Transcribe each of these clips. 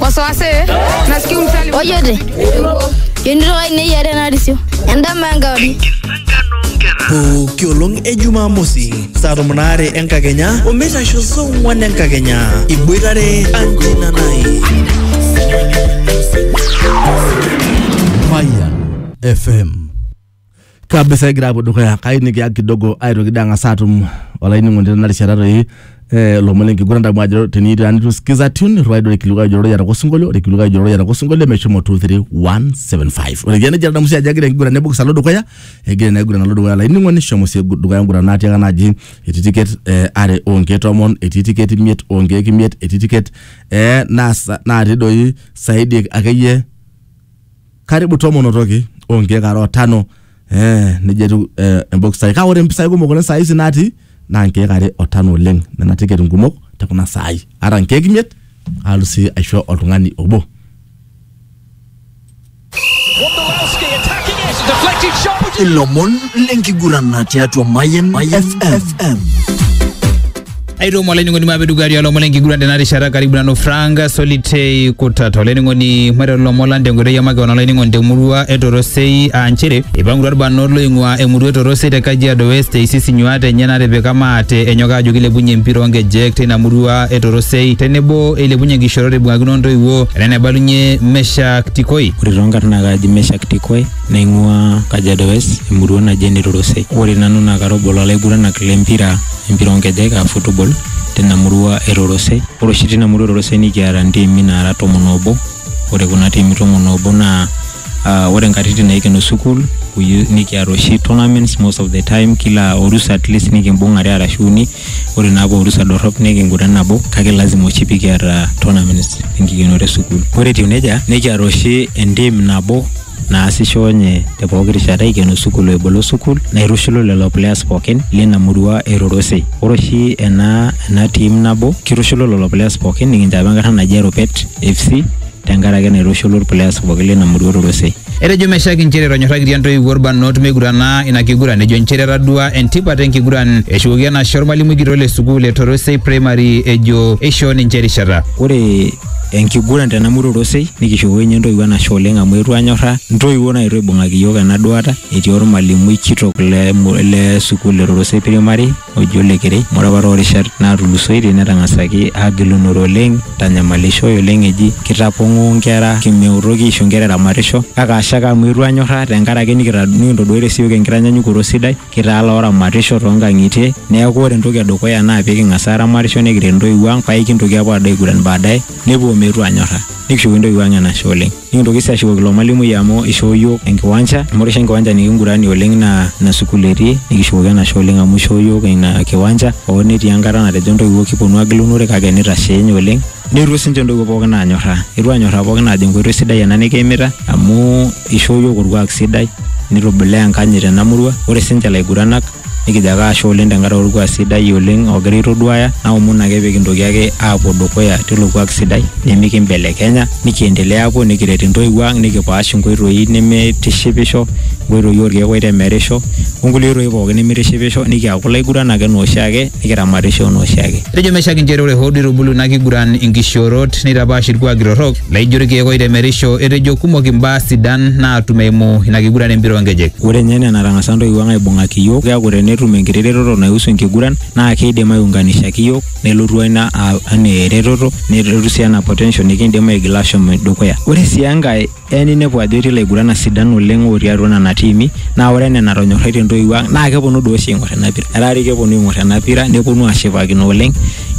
wasiwasi nasikia umsali ojote kenito ai neyiare narisio endama enkauri pooki olong e jumamosi saa tomon aare enkakenya omeitasho saa ong'wan enkakenya iboitare anjina nai Fire FM. kabisa egira apuo dukuya kai nikiya kidogo aitoki dee ang'as atum olainining'oni tena rishata toi eh, lomon lenkiguran damu ajo tenitu sikiza tune irriwai doi orkilikuai ojo rorei atoko osinkolio ore kilikuai ojo rorei atoko osinkolio meshomo 23175 ore idia nejia adamu sii ajo egira enkiguran ebokis alo dukuya egira ina kiguran alo dukuya olainining'oni shomo sii dukuya enguran natiaka naaji etii tiket eh, are onkeek tomon etii tiket imiet onkeek imiet etii tiket eh, naasa- natii doi saidi akeyie karibu tomon otoki onkiek are otano eh, nejia etiu eh, embokisai kake ore impisai kumok oleng saa hizi natii naa nkiek are otano oleng nena tiket nkumok te kuna saai ata nkiek imiet aalu sii aisho oltung'ani obo Wondolowski attacking it. Deflected shot. Would you ilomon lenkiguran tiatua Mayan FM. aitomo olainining'oni maape dukuya tialo lomon lenkiguran tena rishata karibu nanu frank solitei kutata olainining'oni maiteru lomon lang tenkoitoi e makeon olainining'oni temurua e torosei aa nchere eipangutua irbanot loing'ua emurua e torosei te kajiado west eisis inyuaat enye natipika maate enyok aajo kilepunye empira oonkejek teina murua e torosei tenebo eilepunye nkishorot eibung'akino ontoiwuo enaa enaibalunye meshak tikoi ore toonkarn naa kaaji Meshak Tikoi naing'ua Kajiado West emurua naji ene Torosei. Ore nanu naa kara obo lolaiguranak lempira empira oonkejek aa football tina murua e Rorosei. Ore oshi tina murua e Rorosei nikiata ntiimi naara tomon oobo. Ore kuna tiimi tomon oobo naa aa ore nkatitin naikeno sukuul nikiata oshi tournaments most of the time kila orusa atleast nikimbung are arashu uni. Ore naa paa orusa dorrop nikinguran nabo kake lazima oshi pikiata tournaments enkikenore e sukuul. Ore etiu neija nikiata oshi entim nabo naasisho nye te pooki rishata eikeno sukul o ebolo sukul naitushulu lelo players pookin lina murua e Rorosei. Ore oshi ena ena team nabo kitushulu lelo players pookin nikinchapa enkarna naji Eropet FC tenkaraki naitushulu irplayers pookin lina murua e Rorosei. Etejo Meshack inchere etonyorrakitia intoiwuo ilbarnot meigurana ina kiguran ejo inchere etadua entipat enkiguran eshukoki enashe olmalimui kitok le sukul e Torosei Primary ejo eishoo ninche erishata. Ore enkiguran tena murua orosei nikishukoko inye entoiwuo enashe oleng amu etu anyorra ntoiwuo naetuo aibung'aki iyiook ena duata etii ormalimui kitok le, mu- le sukuul e Rorosei primary oji ole Kerei amu ore apa toorishat natulusoitie netang'asaki agilunore oleng tanyamalishoi oleng eji kitapong'oo nkera kimeutoki aisho nkera eramatisho kake ashe ake amu etu anyorra tenkarake nikita- nikintoduatie siyiook enkitanyanyukoto sidai Kitaa looramatisho too nkang'itie neeku ore entoki edukuya naa pee king'as aaramatisho nikiret intoiwuo ang' paa aikintoki aapuo aado aiguran baadaye nepuo ometu aanyorra nikishukoki intoiwuo ang' enashe oleng'. Nikintoki sii ashukoki ilo malimui amu ishoo iyiok enkiwanja amu ore oshi enkiwanja nikinguranie oleng' naa ina sukuul etii nikishukoki enashe oleng' amu ishoo iyiok ina kiwanja hoo netii enkata natejo intoiwuo kiponu aagilunore kake neitashe ninye oleng'. Neitu sinche ntoiwuo pookin aanyorraa, eitu aanyorraa pookin aajo enkoitoi sidai ena nikiimita amu eishoo iyiook olkuak sidai nitubulaa enkanyit tena murua. Ore sinche ilaiguranak nikijo ake ashe oleng tenkaraki olkuak sidai oleng ogira aitoduaya naomon ake pee kintoki ake aapuo dukuya teilo kuak sidai nimikimbelekenya nikiendelea aapuo nikiret intoiwuo ang nikipaash inkoitoi nemeitishipisho, inkoitoi oolkeek oitemerisho onkulie oitoi pookin nemeitishipisho nikiaku ilaiguranak enaa oshiake. nikiramatisho anaa oshiake. Etejo meshiak inchere ore hoo duo eitubulu ina kiguran inkishoorot neitapaash ilkuaki torrok laijo ilkeek oitemerisho, etejo kumok imbaa sidan naatum eimu ina kiguran e mpira oo nkejek. Ore ninye enaa enatang'asa intoiwuo ang aibung'aki iyiook, keaku tenetum enkiti retoto naihusu enkiguran naa keidim aiunganishaki iyiook nelotu ina anaa eretoto nelotu sii anaa potential nikiindim aigila aashom dukuya. Ore sii enkae, Eya ninepu ajo etii ilaiguranak sidan oleng otii atua nena tiimi naa ore enaa enatonyorraitie intoiwuo ang naa keponu doi oshi aing'or ena pira. Etaa doi keponu aing'or ena pira neponu ashipakino oleng,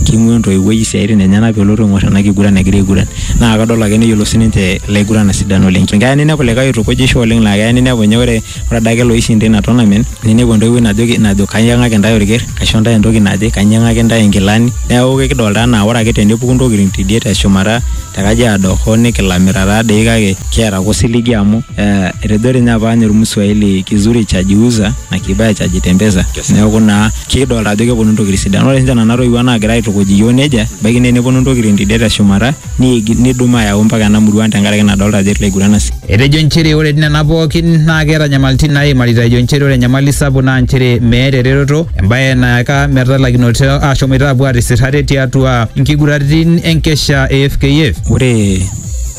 king'uaa entoiwuoi isiaitin enyenak pelotu aing'or ena kiguran egira aiguran naa kadol ake neyiolou sininche ilaiguranak sidan oleng. Keya ninepu likae oitukujisho oleng laa keya ninepu ninye ore ore adake loishinda ina tournament ninepu entoiwuoi najoki najo kainyang'aki intae orker kaisho intae entoki naje kainyang'aki intae inkilani neeku kekidolta anaa ore ake tenepuku intokitin tidie teshumata te kajiado hoo nikilamita taadei kake kiata ake osiligi amu eh, etejo dii ninye apa ninye ormuswahili kizuri cha jiuza na kibaya cha jitembeza neeku naa kikidolta ajo keponu intokitin sidan ore sinche nana toiwuo naagira aitukuj iyiok nejia ebaiki naa eneponu intokitin tidie teshumata niigil nidumu ayau mpaka ena murua ang tenkaraki nadolta ajo etii ilaiguran asi. Etejo nchere ore nena pookin naa keeta nyamalitin naaimarita ejo nchere ore enyamali sapuk naa nchere meeta eretoto embae nayaka metalakinoto aashomoita apuo aatisir ate tiatua nkiguraritin enkesha e FKF. Ore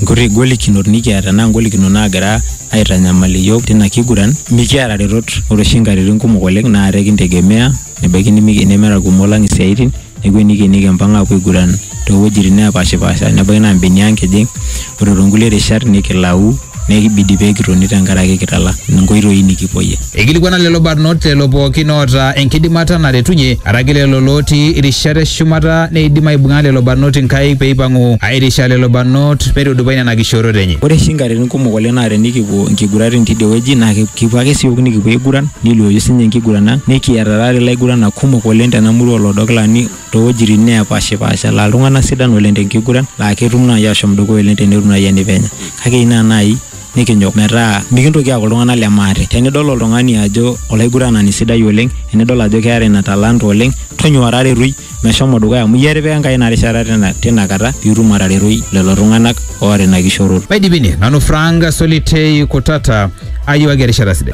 nkuti golikinot nikiata naa ngolikinot naagira aitanyamal iyiook tina kiguran, mikiata retot ore oshi nkatitin kumok oleng naa ate kintegemea Nebaiki nimi- nemeeta kumok lang isiaitin, neeku enikenieki empang apuo aiguran towuejitin nepashipasha. Nebaiki naa mbenia ang kijing, ore tonkulie rishat nikilau, neeku kibidi pekitoni tenkaraki kitala nkoitoi nikipuoyie. Eikilikuana lelo barnot lelo pookin oota enkidimata naretunye, araki lelo lootii irishat e shumata neidim aibung'a lelo barnot inkaik peipang'u aairisha lelo barnot meitudupai nena kishoorot enye. Ore oshi nkatitin kumok oleng naa tenikipuo nkiguratin tidie wueji naa kipuo ake siook nikipuo aiguran Neiluoyu sinye enkiguran ang nikiata taata ilaiguranak kumok oleng tena murua olodokilani toowejitin neepashipaasha laa iltunganak sidan oleng tenkiguran laa ketum naaji aashom dukuya oleng tenetum naaji enipenya kake eyieu naa naaji nikinyok metaa mikintoki aaku iltunganak le maate. Tenidol oltungani ajo olaiguranani sidai oleng enidol ajo keeta ina talanta oleng tonyua taretoi meshomo dukuya amu iyie etipika Enkai ina rishata tina kata pee itum ataretoi lelo tunganak oota ina kishoroto. Maidipini, nanu Frank Solitei Kutata, ayiewaki erishata sidai.